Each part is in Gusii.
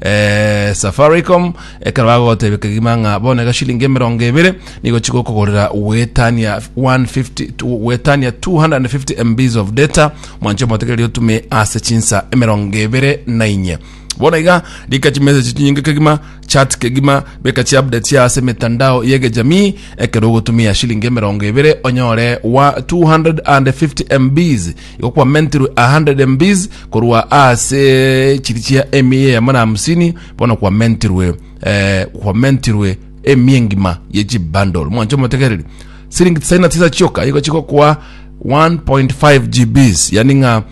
eh, safaricom ekero bagogotebia kegima ng'a bono egashilingi emerongo ebere nigo chigokogorera gwetania 150 to- gwetania 250 mbs of data mwanche omotegereri otume ase chinsa emerongo ebere na inye bono iga rika chimessage chinyinge kegima chat kegima beka chi update ya ase mitandao yegejamii ekero ogotumia shilingi emerongo ebere onyore wa 250 mbs Igo kwamentirwe a hundred mbs korwa ase chiri chia emia eyemo na hamsini bono kwamentirwe eh, kwamentirwe emia engima ye chibundle mwanche omotegereri siringi tisaini na tisa chioka igo chigokwa 1.5 gbs yani ng'a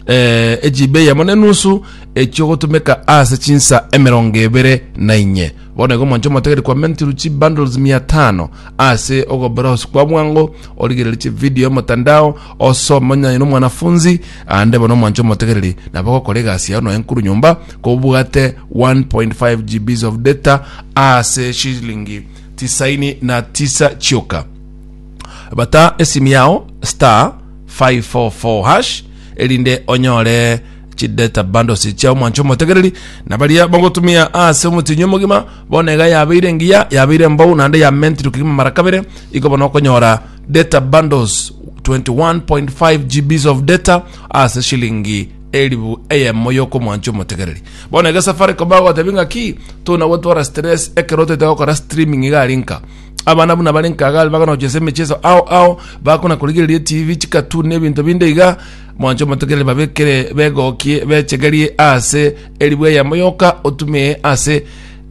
eh, ejibe eyemo nenusu ekiogotumeka ase chinsa emerongo ebere na inye bono igo mwanche omotegeri kwa mentiru chi bundles mia tano ase ogobrowse kwa bwango origereri chi video emotandao Osomonyaye nomwanafunzi, aande bono omwanche omotegereri, nabo gokora egasi yao noe nkuru nyomba, kobwate 1.5 GBs of data ase shilingi tisaini na tisa chioka. Bata esimu yao star 544 hash erinde onyore chidata bundles chia omwanche omotegereri na baria bagotumia ase omotinyi omogima bono iga yabeire engiya yabeire embou naende yamentire kegima mara kabere igo bono okonyora data bundles 21.5 GBs of data ase shilingi elifu eyemo yokomwancha omotegereri bono ege safaricom bagotebi ng'a ki tuna gotwara stress ekero toite gokora streaming iga ari nka abana buna bari nka iga bakona gochesa emecheso ao ao bakona korigereria etv chikatun na ebinto binde iga mwancha omotegereri babekere begokie bechegerie ase elifu eyemo yoka otumie ase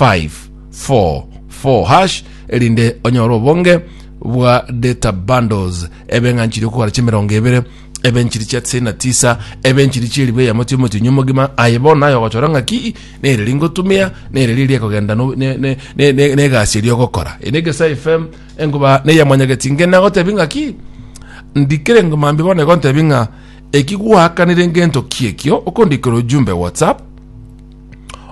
544#, erinde onyore obonge bwa data bundles ebe ng'a nchiri okogora chi'emerongo ebere, ebe nchiri chia tisaini na tisa, ebe nchiri chi'eribu eyemo chi'omotienyi omogima. Aye bono naye ogochora ng'a ki nere ringotumia, nere riria riakogenda no- ne- ne- ne- ne- ne egasi eria ogokora. Eye n'Egesae FM, enkuba neya Mwanyageti. Inge nagotebi ng'a ki? ndikire ngo mambia bono igo ntebi ng'a eki gwakanire ngento ki ekio okondikera ojumbe WhatsApp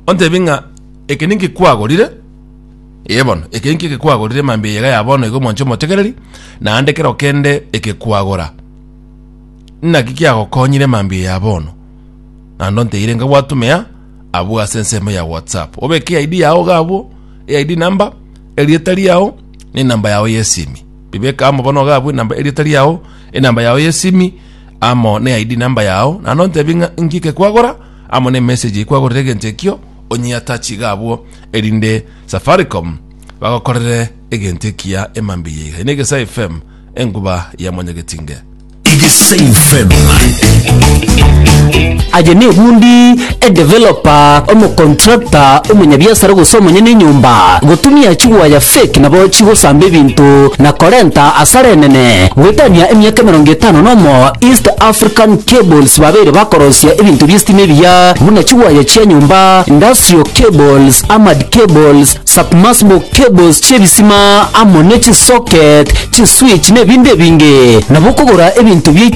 ontebi ng'a eke ninki kwagorire ee bono eke ninki eke kwagorire mambia eyega ya bono iga omwanche omotegereri naende kero kende eke kwagora naki kiagokonyire mambia ya bono naende onteire nka gwatumia abwo ase ensemo ya whatsapp obeke id yao iga abwo eid number erieta riao na enamba yao ya esimi bibeka amo bono iga abwo enamba erieta riao enamba yao ya esimi amo na eid number yao naende ontebi ng'a inki eke kwagora amo nemessage ekwagorera egento ekio onyeatachiga abwo erinde Safaricom bagokorere egento ekiya emambia yaiga. Ine Egesae FM enkuba ya Mwanyagetinge. Egesae FM. Aye nebundi, edeveloper, omocontractor, omonyabiasara gose omonyene enyomba gotumia chigwaya fake nabo chigosamba ebinto na korenta asara enene. Goetania emiaka emerongo etano nomo East African Cables babeire bakorosia ebinto bi'esitima ebiya buna chiwaya chia nyomba, industrial cables, armored cables, submersible cables chi'ebisima amo ne chisocket, chiswitch na ebinto ebinge. Nabo okogora ebinto biaito